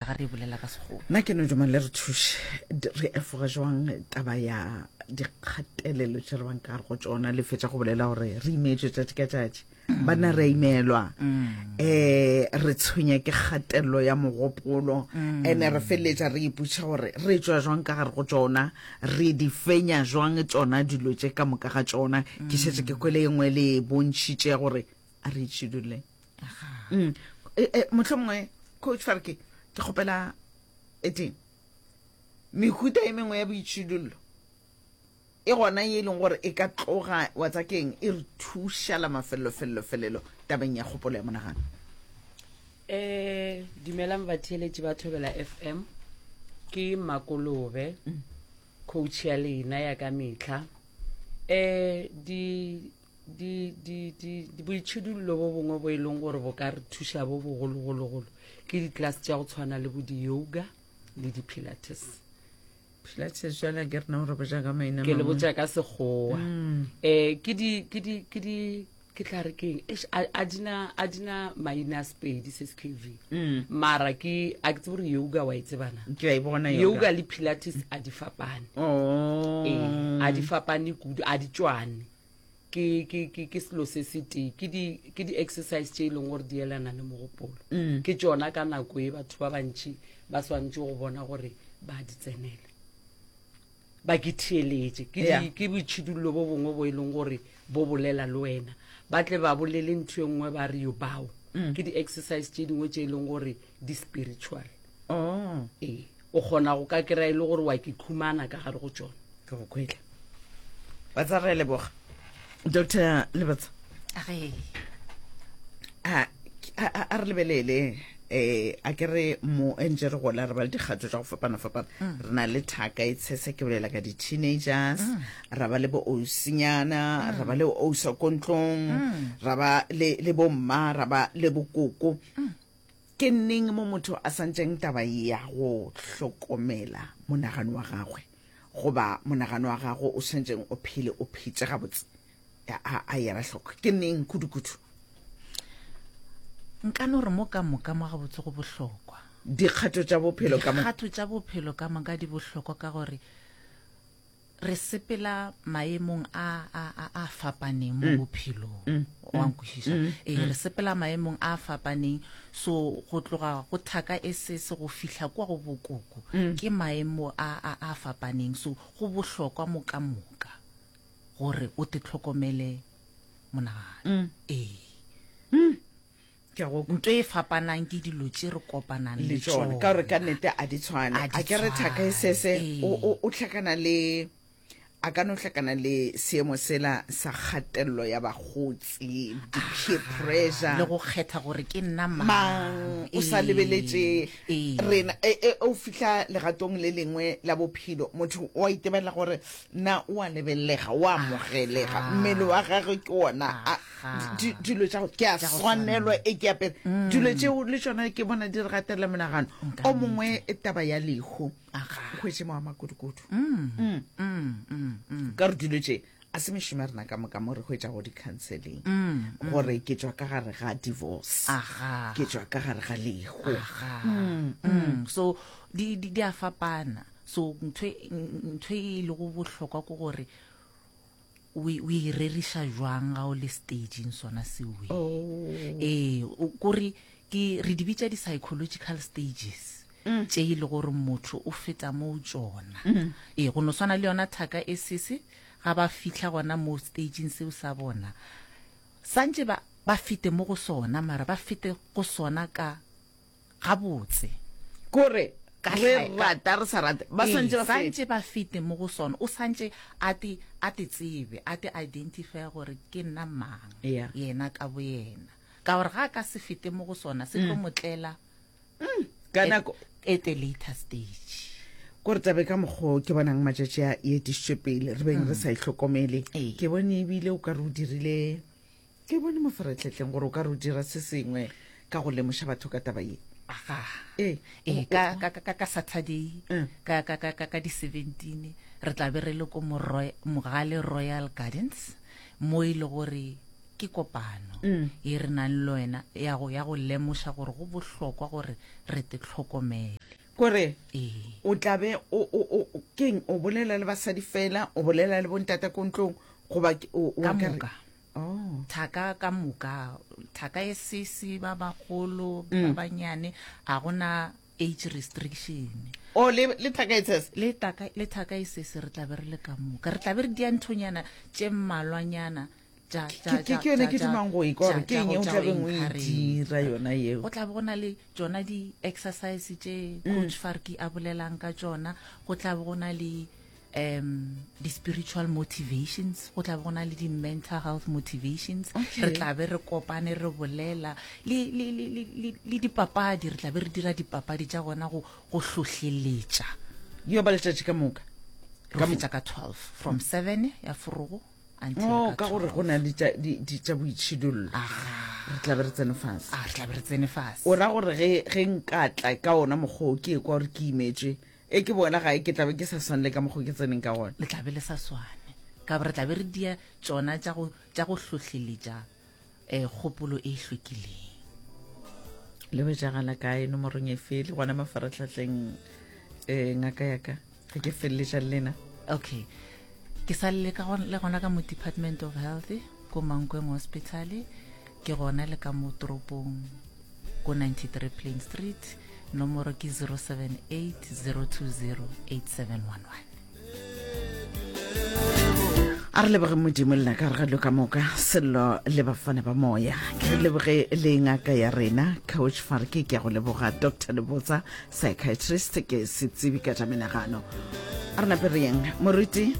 ga re e bolela ka sekgowa nna ke no duma le re thuše re efoga jwang taba ya dikgatelelo tše re bang ka gare go tsona le fetša go bolela gore re imeetswe tšatši ka tšatši mm. banna re a imelwa um re tshwenya ke kgatelelo ya mogopolo mm. ene re feleletša re iputšha gore re tswa jwang ka gare go tsona re di fenya jwang tsona dilo tše ka moka ga tsona ke šetse ke kwele e nngwe le e bontšhitše gore a re itšhiduleng mm. e, e, motlho mongwe coach fare ke ke kgopela eteng mehuta e mengwe ya boitšhidullo e gona e leng gore e ka tloga wa tsa keng e re thušala mafelelofelelofelelo tabeng ya kgopolo ya monagano um dumelang batheeletši ba thobela f m ke makolobe mm. coach ya lena ya ka metlha um boitšhidullo bo bongwe bo e leng gore bo ka re thuša bo bogologologolo ke ditlase tša go tshwana le bo di-yoga le di-pilates pilates jala ke rena gore boja ka maina ke le boja ka segowa um ke di ke di ke di ke tla re keng a dina a dina maina spedi se k v mm. mara ke a ke tsebore yoga wa e tsebana ke a e bona yoga le pilates a di fapane oh ee a di fapane kudu a di tswane ke ke ke ke selo se se tee ke di ke di exercise tše e leng gore di elana le mogopolo mm. ke tšona ka nako e batho ba bantši ba swanetše go bona gore ba di tsenela ba ke theeletše ke yeah. ke boitšhidullo bo bongwe bo e leng gore bo bolela le wena ba tle ba bolele ntho e nngwe ba re yo bao mm. ke di-exercise tše dingwe tše e leng gore di-spiritual oh. ee O kgona go ka kry-a e le gore wa ke khumana ka gare go tšona. Ke go khwetla. Batsa re leboga. Doctor Lebatsa. A a re lebelele eh a ke re mo entse re gola re ba le dikgato tsa go fapana fapana mm. re na le thaka e tshese ke bolela ka di-teenagers mm. ra ba le bo osinyana mm. ra ba le osa kontlong ra ba le bomma ra ba le bokoko Ke neng mo motho a santšeng taba ya go hlokomela monagano wa gagwe goba monagano wa gago o santšeng o phele o phetse gabotse a yera hloko? Ke neng kudu-kudu? Nka no re mo ka moka mo gabotse go bohlokwa. Dikgato tša bophelo ka moka. Dikgato tša bophelo ka moka di bohlokwa ka gore re sepela maemong a a a a fapaneng mo mm. bophelong mm. wa mm. nkwešiša ee re sepela maemong a a fapaneng so go tloga go thaka e se se go fihla kwa go bokoko ke maemo a a a fapaneng so go bohlokwa moka moka gore o te tlhokomele monagano ee Ke a go. Nto e fapanang ke dilo tše re kopanang le tšone. Ka gore ka nete a di tshwane. A di tshwane. A ke re Thaka e sese o, o, o hlakana le, a ka no hlakana le seemo sela sa kgatello ya bakgotsi, di-peer pressure. Le go kgetha gore ke nna mang. Mang, o sa lebeletše rena. E, e, o fihla legatong le lengwe la bophelo, motho o a itebella gore na o a lebelelega o amogelega ah. mmele wa gage ke ona dilo tša ke a swanelwa e ke apere mm. dilo tšeo le tsona ke bona di re gatelela menagano o mongwe e taba ya lehu kgwetse mo wa makudukudu mm. Mm. ka re dilo tše a se mešomo ya rena ka moka mo re go etša go di-counseling mm, mm. gore ke tswa ka gare ga divorce ke tswa ka gare ga lego mm, so di a fapana So ntho e, ntho e e lego bohlokwa ke gore o e- o e reriša jwang ga o le stageng sona seo e. Oh. ee o- kore ke re di bitša di-psychological stages Mm. tše e le gore motho o feta moo tšona Mm. ee go no swana le yona thaka e sese ga ba fitlha gona mo stageng seo sa bona santše ba ba fete mo go sona mara ba fete go sona ka gabotse kore re rata re sa rate ba santse ba santse ba fete mo go sona o santse a te a te tsebe a te identify gore ke nna mang yena ka bo yena ka gore ga ka se fete mo go sona se tlo mm. motlela mm. ka nako at a later stage kore tabe ka mokgo ke bonang matšatši a e etišitšwe pele re beng re mm. sa itlhokomele ke bone ebile o ka re o dirile Ke bone mo ferehlehleng gore o ka re o dira se sengwe ka go lemoša batho ka taba ye. Aga. Ee. Ee, ka, ka, ka, ka, ka Saturday, Eh. ka, ka, ka, ka, ka di 17, re tla be re le ko Moroy- Mogale Royal Gardens, mo e le gore ke kopano Mm. ye re nang le wena ya go, ya go lemoša gore go bohlokwa gore re te tlhokomele. Kore Ee. o tla be o, o, o, o- keng, o bolela le basadi fela, o bolela le bontate ko ntlong, goba ke- o, o Ka akare- moka. Oh. thaka ka moka thaka e sese ba bagolo Mm. ba banyane ga gona age restriction o Oh, le le thaka e tshese le taka- le thaka e sese re tlabe re le ka moka re tlabe re dia nthonyana tše mmalwanyana tša- Ke- tša- ke- tša- ke yone ke tša- dumang go e kwa gore tša- ke tša eng go- e o tša go tlabeng o e encourage. dira yona eo go tlabe go na le tšona di-exercise tše Mm. coach farki a bolelang ka tšona go tlabe go na le um di-spiritual motivations go tla be go na le di-mental health motivations re tla be re kopane re bolela le dipapadi re tla be re dira dipapadi tša gona go hlohleletša yo ba letšatši ka moka ka fetša ka 12 from 7 ya forogo oh, ka gore go na le tša boitšhidollo re tla be re tsene fase ah, re tla be re tsene fase o ra gore ge nkatla ka ona mokgoo ke e kwa gore ke imetswe Ge ke boela gae, ke tla be ke sa swane le ka mokgwa o ke tseneng ka gona. Le tla be le sa swane, ka gore re tla be re dia tšona tša go, tša go hlohleletša um kgopolo e hlwekileng. Le hwetšagala kae? Nomorong e fe? Le gona mafaratlhatlheng? um ngaka ya ka, ge ke feleletša le lena. Okay. Ke sa le ka le gona ka mo Department of Health, ko Mankweng Hospital. Ke gona le ka mo toropong ko 93 Plain Street, nomoro ke 0780208711. a re leboge modimo lena ka re ga lo ka moka sello le bafana ba moya ke re leboge le ngaka ya rena coach farke ke ya go leboga dr lebotsa psychiatrist ke setsibi ka tša menagano a re nape re yeng moruti